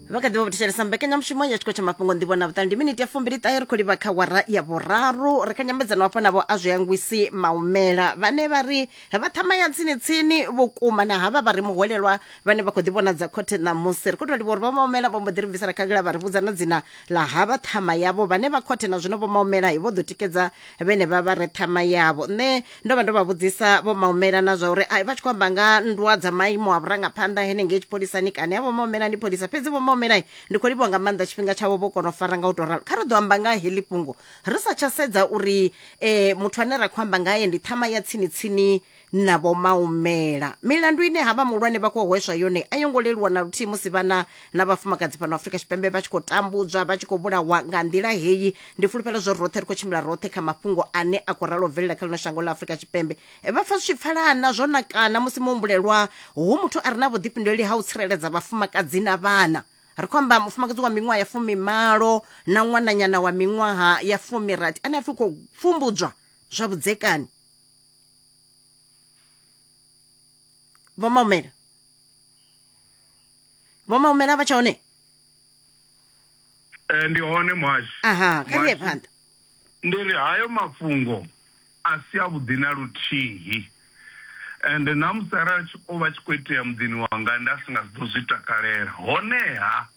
vha kha ḓivha vho thetshelesa mbekanyamushumo ya tshikolo tsha mafhungo nḓivho na vhuṱali ndi miniti ya fumbili ṱahe ri khou livha kha wara ya vhuraru ri kha nyambedzano hafho navho a zwi angwisi maumela vhane vha ri vha ṱhama ya tsini-tsini vhukuma na havha vha ri muhwelelwa vhane vha khou ḓi vhonadza khothe ṋamusi ri khou tou livha uri vha maumela vho mbo ḓi ri bvisela khagala vha ri vhudza na dzina ḽa havha ṱhama yavho vhane vha khothe na zwino vho maumela vho ḓo tikedza vhene vha vha re ṱhama yavho nṋe ndo vha ndo vha vhudzisa vho maumela na zwa uri ai, vha tshi khou amba nga nndwa dza maimo a vhurangaphanḓa henengei tshipholisani kani avho maumela ndi pholisa fhedzi vho maumela ndi khou livhuwa nga maanḓa tshifhinga tshavho vho kona u fara nga u tou ralo kha ri ḓo amba nga heḽi fhungo ri sa tsha sedza uri eh, muthu ane ra khou amba ngaye ndi ṱhama ya tsini tsini na vho maumela milandu ine ha vha muhulwane vha khou hweswa yone a yo ngo leluwa na luthihi musi vhana na vhafumakadzi fhano afrika tshipembe vha tshi khou tambudzwa vha tshi khou vhulawa nga nḓila heyi ndi fulufhelo zwo roṱhe ri khou tshimbila roṱhe kha mafhungo ane a khou ralo bvelela kha ḽino shango ḽa afrika tshipembe E, vha pfa zwi tshi pfalana zwo nakana musi muhumbulelwa hu muthu a re na vhuḓifhinduleli ha u tsireledza vhafumakadzi na vhana ri khou amba mufumakadzi wa miṅwaha ya fumimalo na ṅwananyana wa miṅwaha ya fumirathi ane a pfi khou pfumbudzwa zwa vhudzekani vho maumela vho maumela vha tsha hone eh, ndi hone mwashi aha kha ri phanḓa ndi ri hayo mafhungo a si a vhuḓi na luthihi and na musi arali o vha tshi khou itea muḓini wanga nda si nga si ḓo zwi takalela honeha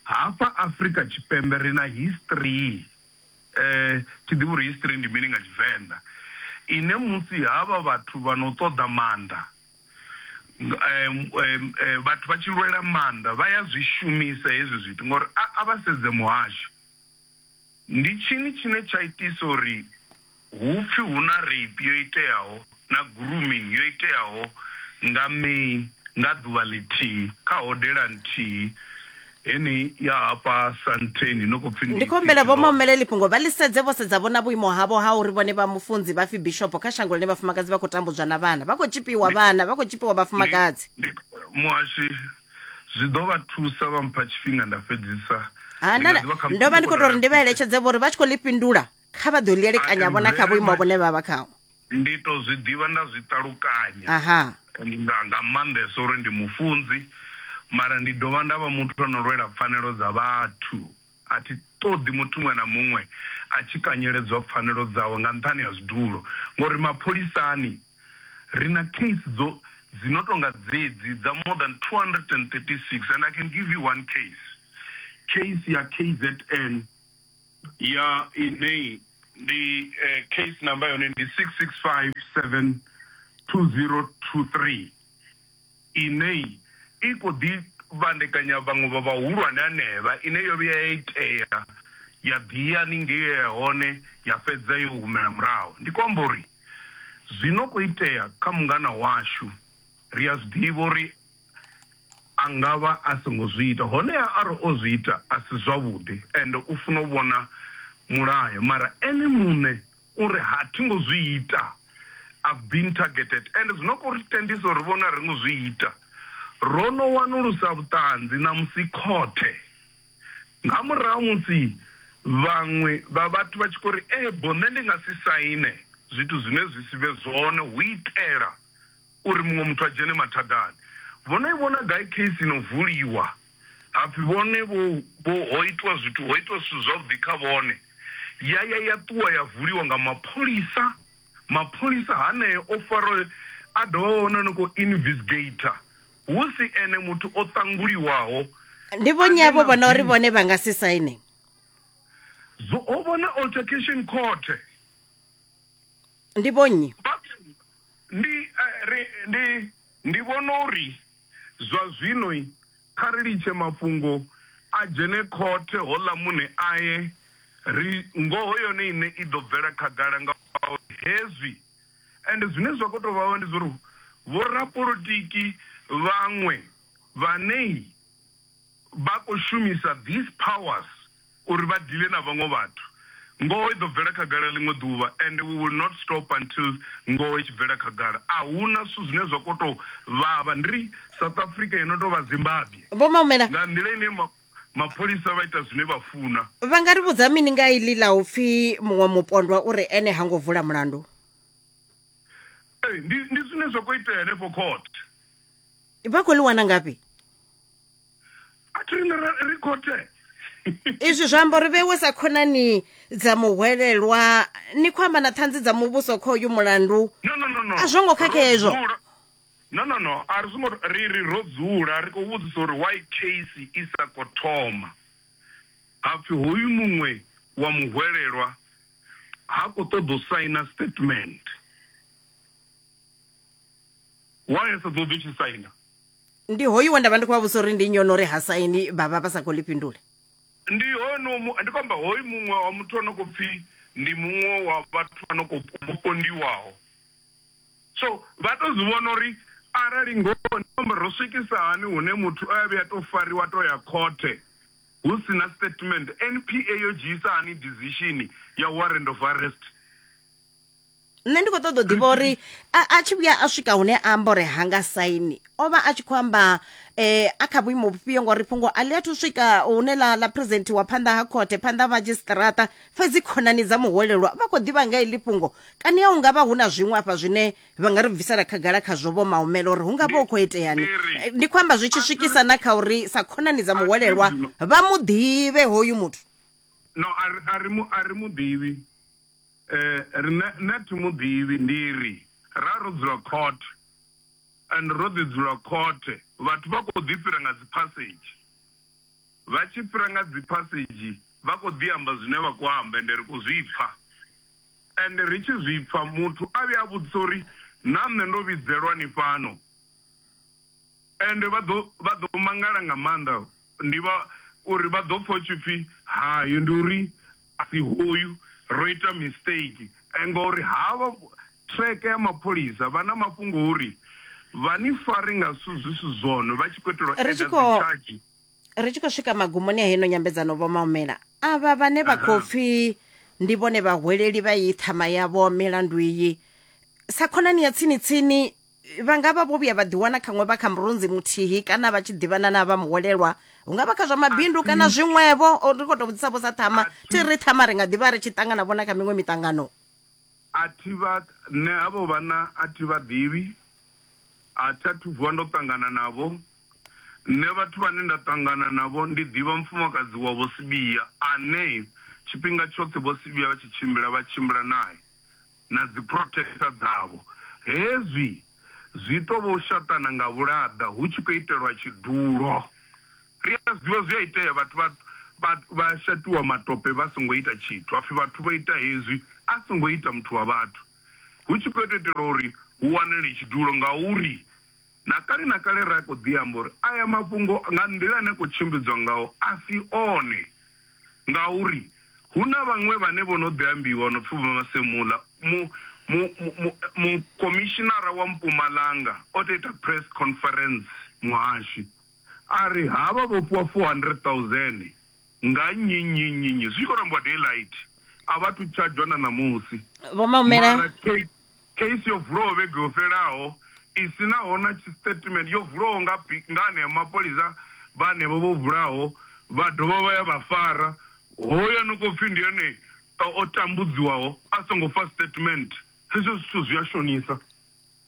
hafha afrika tshipembe ri na history eh tshi ḓivha uri history ndi mini nga tshivenḓa ine musi havha vhathu vha no ṱoḓa maanḓa vhathu vha tshi lwela maanḓa vha ya zwi shumisa hezwi zwithu ngori a vha sedze muhasho ndi tshini tshine tsha itisa uri hu pfhi hu na rape yo iteaho na grooming yo iteaho nga May nga ḓuvha ḽithihi kha hodela nthihi. He ni ya hafha Santheni no khou pfi ndi. Ndi khou humbela vho Mahumeleli fhungo vha ḽi sedze vho sedza vho na vhuimo havho ha uri vhone vha mufunzi vha pfi bishopo kha shango ḽine vhafumakadzi vha khou tambudzwa na vhana vha khou tzhipiwa vhana vha khou tzhipiwa vhafumakadzi. Ndi, ndi, Muhashi, zwi ḓo vha thusa vha mpha tshifhinga nda fhedzisa. Ha, Ndi nga nda, ḓi vha khamusi ndo vha ndi ndi khou khou tou ri ndi vha eletshedze vho ri vha tshi khou ḽi fhindula kha vha ḓo lielekanya vhona kha vhuimo vhune vha vha khaho ndi to zwi ḓivha nda zwi ṱalukanya aha nga nga maanḓesa uri ndi mufunzi mara ndi dovha nda vha muthu ano lwela pfanelo dza vhathu a thi ṱoḓi muthu muṅwe na muṅwe a tshi kanyeledzwa pfanelo dzawe nga nṱhani ha zwidulo ngori mapholisani ri na case dzo dzi no tonga dzedzi dza more than 236 and i can give you one case case ya kzn ya inei ndi eh, case number yone ndi 66572023 inei i khou ḓi vhandekanya vhaṅwe vha vhahulwane anevha ine yo vhuya ya itea ya ḓiya ningei ya hone ya fhedza yo humela murahu ndi khou amba uri zwino khou itea kha mungana washu ri a zwi ḓivha uri a nga vha a songo zwi ita, honeha arali o zwi ita a si zwavhuḓi ende u funa u vhona mulayo. Mara ene muṋe u ri, Ha thi ngo zwi ita. I've been targeted. Ende zwi no khou ri tendisa uri ri vhone a ri ngo zwi ita. Ro no wanulusa vhuṱanzi, ṋamusi khothe. Nga murahu musi vhaṅwe vha vhathu vha tshi khou ri, Ee, boo, nṋe ndi nga si saine zwithu zwine zwi si vhe zwone hu itela. uri muṅwe muthu a dzhene mathadani. Vho no i vhona gai case i no vuliwa ha pfi vhone vho vho ho itwa zwithu ho itwa zwithu zwavhuḓi kha vhone ya ya ya ṱuwa ya vuliwa nga mapholisa. Mapholisa haneo o fara a dovha vha vhona no kho invisgator hu si ene muthu o ṱanguliwaho. Ndi vho nnyi avho vhona uri vhone vha nga si saine? Zwo ho vhona altercation court. Ndi vho nnyi? Vha Ndi, eh, ri, ndi, ndi vhona uri zwa zwino kha ri litshe mafhungo a dzhene khothe, houḽa muṋe aye, ri, ngoho yone iṋe i ḓo bvela khagala ngauri hezwi. Ende zwine zwa khou tou vha hone ndi zwa uri vhorapolotiki vhaṅwe vhane vha khou shumisa these powers, uri vha dealer na vhaṅwe vhathu. Ngoho i ḓo bvela khagala ḽiṅwe ḓuvha and we will not stop until ngoho i tshi bvela khagala. A hu na zwithu zwine zwa kho tou vhavha ndri South Africa yo no tou vha Zimbabwe Vho Maumela, nga nḓila ine ma, mapholisa vha ita zwine vha funa. vha nga ri vhudza mini nga iḽi ḽa u pfi muṅwe mupondwa u ri ene ha ngo vula mulandu? Ee, ndi, ndi zwine zwa khou itea henefho court. Vha khou ḽi wana ngafhi? a thi rine ri khothe izwi zwi amba uri vhewe sa khonani dza muhwelelwa ni khou amba na ṱhanzi dza muvhuso kha uyu mulandu a zwo ngo khakhea hezwo no no no a ri songo ri ri ro dzula ri khou vhudzisa uri why case i sa khou thoma hapfi hoyu muṅwe wa muhwelelwa ha khou ṱoḓa u saina statement why a sa ṱoḓi u tshi saina ndi hoyu we nda vha ndi khou vha vhusa uri ndi nnyi ono ri ha saini vha vha vha sa khou ḽi fhindula ndi hono mu- ndi khou amba hoyu muṅwe wa muthu ano khou pfi ndi muṅwe wa vhathu ano khou vho pondiwaho so vha to zwi vhona uri arali ngoho ndi amba ro swikisa hani hune muthu o ya vhuya to fariwa to ya khothe hu si na statement npa yo dzhiisa hani decision ya warrant of arrest nṋe ndi khou ṱoḓa u ḓivha uri a tshi vhuya a swika hune a amba uri hanga saini o vha a tshi khou amba um a kha vhuimo vhufhio ngori fhungo a ḽi athu u swika hune ḽa ḽa president wa phanḓa ha khothe phanḓa ha madzhisiṱiraṱa fhedzi khonani dza muhwelelwa vha khou ḓivha nga heḽi fhungo kani a hu nga vha hu na zwiṅwe afha zwine vha nga ri bvisela khagala khazwo vho maumela uri hu nga vha hu khou iteani ndi khou amba zwi tshi swikisa na kha uri sa khonani dza muhwelelwa vha mu ḓivhe hoyu muthu no a ri mu ḓivhi Riṋe nṋe a thi mu ḓivhi, ndi ri, ra ro dzula khothe and ro ḓi dzula khothe vhathu vha khou ḓi fhira nga dziphasedzhi, vha tshi fhira nga dziphasedzhi vha khou ḓi amba zwine vha khou amba ende ri khou zwi pfa ende ri tshi zwi pfa muthu a vhuya a vhudzisa uri na nṋe ndo vhidzelwa ni fhano ende vha ḓo vha ḓo mangala nga maanḓa. Ndi vha uri vha ḓo pfa hu tshi pfi hayo ndi uri a si hoyu ro ita mistake ngori havha track ya mapholisa vha na mafhungo uri vha ni fare nga zwithu zwi si zwone vha tshi khou itela u Ri tshi add khou- dzi charge ri tshi khou swika magumoni a heno nyambedzano vho maumela avha vhane vha khou pfi ndi vhone vhahweleli vha iyi ṱhama yavho milandu iyi sa khonani ya tsini tsini vha nga vha vho vhuya vha ḓiwana khaṅwe vha kha murunzi muthihi kana vha tshi ḓivhana na vha muholelwa hu nga vha kha zwa mabindu kana zwiṅwevho ri khou tou vhudzisa vho sa ṱhama thi ri ṱhama ri nga ḓivha ri tshi ṱangana vhona kha miṅwe miṱangano a thi vha nṋe havho vhana a thi vha ḓivhi a thi a thu vuwa ndo ṱangana navho nṋe vhathu vhane nda ṱangana navho ndi ḓivha mufumakadzi wa vho sibia ane tshifhinga tshoṱhe vho sibia vha tshi tshimbila vha tshimbila naye na dziphrothesa dzavho. Hezwi zwi tou vha u shaṱana nga vhulaḓa hu tshi khou itelwa tshidulo. Ri a zwi ḓivha zwi a itea vhathu vha vha vha shaṱiwa matope vha songo ita tshithu ha pfi vhathu vho ita hezwi a songo ita muthu wa vhathu hu tshi khou tou itelwa uri hu wanale tshidulo ngauri. Na kale na kale ra khou ḓi amba uri aya mafhungo nga nḓila ane a khou tshimbidzwa ngaho a si one ngauri hu na vhaṅwe vhane vho no ḓi ambiwa no pfi Vho Masemola. Mu, mu, mu, mu, mu khomishinara wa Mpumalanga o tou ita press conference muhashi a ri havha vho fhiwa 400,000 nga nnyi nnyi nnyi nnyi zwi tshi khou rambiwa daylight a vha thu tshadzhwa na ṋamusi Vho Maumela, mara K Case yo vulwaho vhege yo fhelaho i si naho na tshisitatimende yo vulwaho nga nga anea mapholisa vha henevho vho vhulaho vha dovha vha ya vha fara hoyo ano khou pfi ndi ene o tambudziwaho a songo fa statement. Hezwo zwithu zwi a shonisa.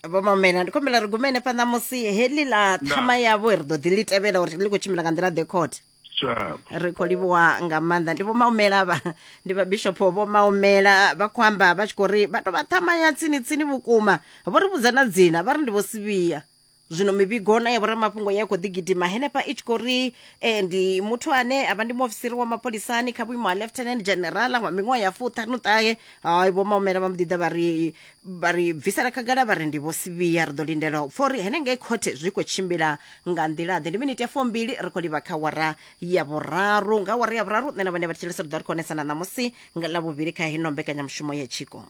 Vho Maumela ndi khou humbela ri gume henefha ṋamusi heḽi ḽa Ndaa. ṱhama yavho ri ḓo ḓi ḽi tevhela uri ḽi khou tshimbila nga nḓila ḓe khothe. Sure. ri khou livhuwa nga maanḓa ndi vho maumela vha ndi vha bishop vho maumela vha khou amba vha tshi khou ri vha tou vha ṱhama ya tsini tsini vhukuma vho ri vhudza na dzina vha ri ndi vho sivhiya zwino mivhigo na ya vhoramafhungo ya khou ḓi gidima henefha i tshi khou ri eh, ndi muthu ane a vha ndi muofisiri wa mapholisani kha vhuimo ha lieutenant general wa miṅwaha ya fuṱhanuṱahe hai vho maumela vha mbo ḓi ḓa vha ri vha ri bvisela khagala vha ri ndi vho Sivhiya. Ri ḓo lindela u pfa uri henengei khothe zwi khou tshimbila nga nḓila-ḓe. Ndi miniti ya fumbili ri khou livha kha awara ya vhuraru. Nga awara ya vhuraru nṋe na vhane vha thetshelesa ri ḓo ri khou onesana ṋamusi nga Ḽavhuvhili kha heino mbekanyamushumo ya Tshiko.